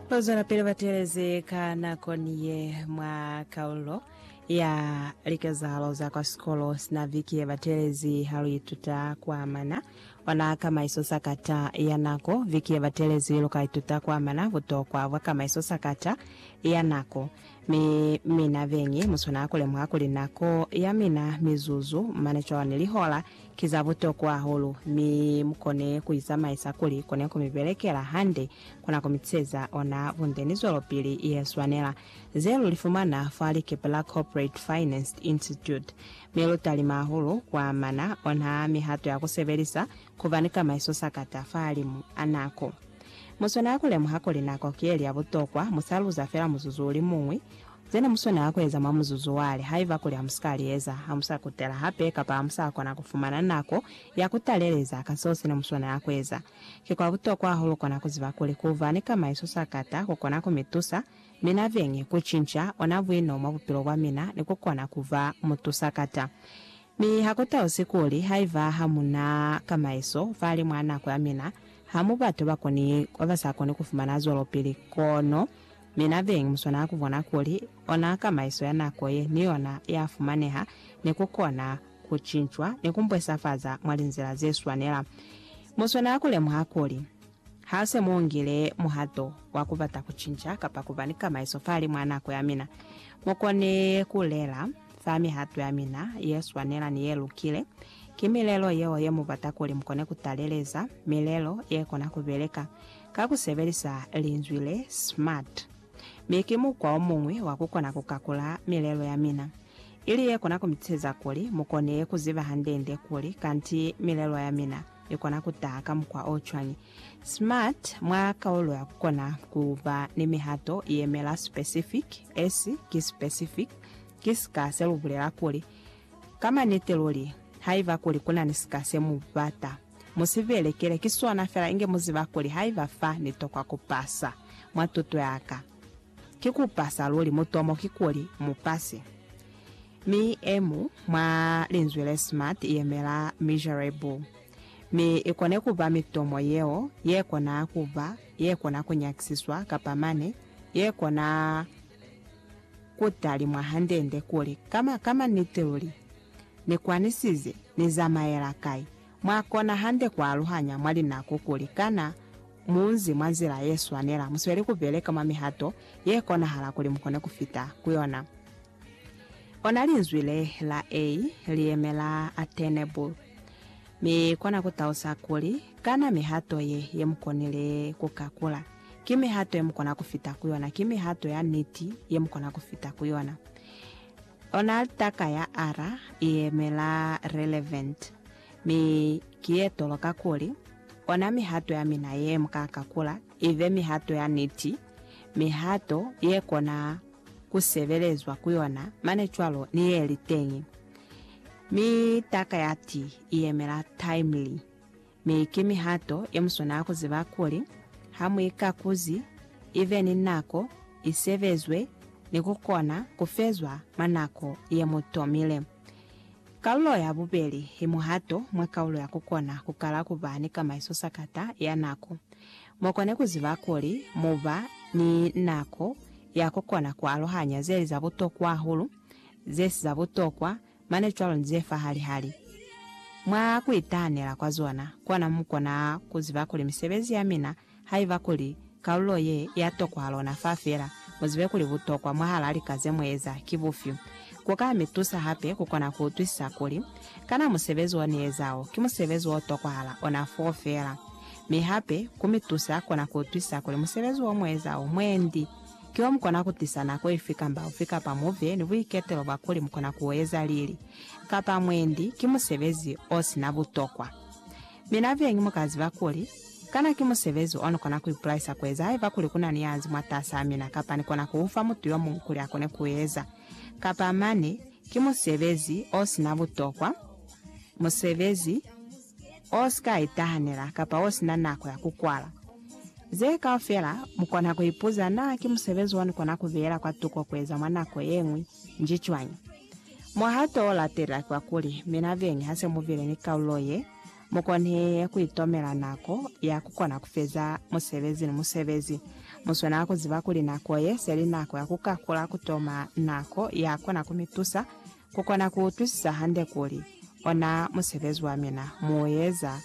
Bazwelapili ba teelezi ka nakoni ye mwa kaulo ya likezahalo za kwa sikolo sina viki ye ba teelezi ha lu ituta ku amana ona kamaiso sakata ya nako. Viki ye ba teelezi lu ka ituta ku amana butokwa bwa kamaiso sakata ya nako. Mi mina beñi mu swanela ku lemuha kuli nako ya mina mizuzu mane cwalo ni lihola ki za butokwa hahulu, mi mu kone ku i zamaisa kuli kone ku mi belekela hande, kona ku mi tiseza ona bunde ni zwelopili ye swanela. Ze lu li fumana fa Likepela Corporate Finance Institute, mi lu talima hahulu ku amana ona mihato ya ku sebelisa ku ba ni kamaiso sakata fahalimu a nako. Mu swanela ku lemuha kuli nako ki ye li ya butokwa, mu sa luza fela muzuzu o li muñwi Zena muswanela kueza mwa muzuzu wale, haiba kuli hamusikaa lieza, hamusa kutela hape kapa hamusa kona kufumana nako ya kutaleleza ka seo sene muswanela kueza. Ki kwa butokwa hahulu kona kuziba kuli kuba ni kama iso sakata kukona kumitusa mina beñi kucinca ona buino mwa bupilo bwamina ni kukona kuba mutusakata. Mi ha ku tausi kuli haiba ha mu na kamaiso fahali mwa nako ya mina, ha mu batu ba koni, ba ba sa koni ku fumana zwelopili. Kono, mi na beñi mu swanela ku bona kuli ona kamaiso ya nako ye ni yona ya fumaneha, ni ku kona ku cincwa ni ku mbwesafaza mwa linzila ze swanela. Mu swanela ku lemuha kuli, Ha se mu ngile muhato wa ku bata ku cinca kapa ku ba ni kamaiso fahali mwa nako ya mina, mu kone ku lela fa mihato ya mina ye swanela ni ye lukile. Ki milelo yeo ye mu bata kuli mu kone ku taleleza, milelo ye kona ku beleka ka ku sebelisa linzwi le smart. Mi ki mukwa o muñwi wa ku kona ku kakula milelo ya mina, ili ye kona ku mi tuseza kuli mu kone ku ziba hande-nde kuli kanti milelo ya mina i kona ku taha ka mukwa o cwañi? Smart mwa kaulo ya ku kona ku ba ni mihato i yemela specific, esi ki specific, ki sika se lu bulela kuli, Ka maniti luli, haiba kuli ku na ni sika se mu bata, mu si belekele, ki sona fela inge mu ziba kuli haiba fa ni tokwa ku pasa mwa tuto ya ka, ki ku pasa luli, mutomo ki kuli mu pase. Mi e mu mwa linzwi le smart i yemela miserable. Mi i kone ku ba mitomo yeo ye kona ku ba, ye kona ku nyakisiswa, kapa mane, ye kona ku talimwa hande-nde kuli, Ka ma, ka maniti luli, Ni kwanisize, Ni zamaela kai? Mwa kona hande ku aluhanya mwa linako kuli, Kana mu nzi mwa nzila ye swanela? Mu sweli ku beleka mwa mihato ye konahala kuli mu kone ku fita ku yona. Ona linzwi le la A li yemela attainable, mi kona ku tausa kuli, kana mihato ye, ye mu konile ku kakula, ki mihato ye mu kona ku fita ku yona, ki mihato ya niti ye mu kona ku fita ku yona. Ona litaka ya R i yemela relevant, mi ki ye toloka kuli, ona mihato ya mina ye mu ka kakula, Ibe mihato ya niti, mihato ye kona ku sebelezwa ku yona mane cwalo ni ye li teñi. Mi taka ya ti i yemela timely, mi ki mihato ye mu swanela ku ziba kuli ha mu ikakuzi, ibe ni nako, i sebezwe ni ku kona ku fezwa mwa nako ye mu tomile. Kalulo ya bubeli i muhato mwa kalulo ya kukona kukala kuba ni kamaiso sakata ya nako. Mukone kuziba kuli muba ni nako ya kukona kualuhanya zeli za butokwa hahulu, zesi za butokwa, mane cwalo ni zefa hali-hali. Mwa kuitahanela kwa zona, kona mukona kuziba kuli misebezi yamina Haiba kuli kalulo ye ya tokwa lona fa fela mu zibe kuli butokwa mwahalaa lika ze mu eza ki bufyu, ku ka mi tusa hape ku kona ku utwisisa kuli, Kana musebezi wo ni eza wo ki musebezi wo tokwahala ona foo fela? Mi hape ku mi tusa kona ku utwisisa kuli musebezi wo mu eza wo mwendi ki wo mu kona ku tisa nako ifi kamba ufi kapa mu be ni buiketelo bwa kuli mu kona ku u eza lili kapa mwendi ki musebezi o si na butokwa. Mi na beñi mu ka ziba kuli, Kana ki musebezi o ni kona ku ipulaisa ku eza haiba kuli ku na ni yanzi mwatasaa mina kapa ni kona ku ufa mutu yo muñwi kuli a kone ku eza? Kapa mane, ki musebezi o si na butokwa, musebezi o si ka itahanela kapa o si na nako ya ku kwala. Ze kaufela mu kona ku ipuza, Na ki musebezi o ni kona ku beela kwa tuko ku eza mwa nako ye ñwi? Nji cwañi? Mwaha to latela kwa kuli, mina veni ha se mu bile ni kalulo ye, mu kone ku itomela nako ya ku kona ku feza musebezi ni musebezi. Mu swanela ku ziba kuli nako ye se li nako ya ku kakula ku toma nako ya kona ku mi tusa ku kona ku utwisisa hande kuli, ona musebezi wa mina mu u eza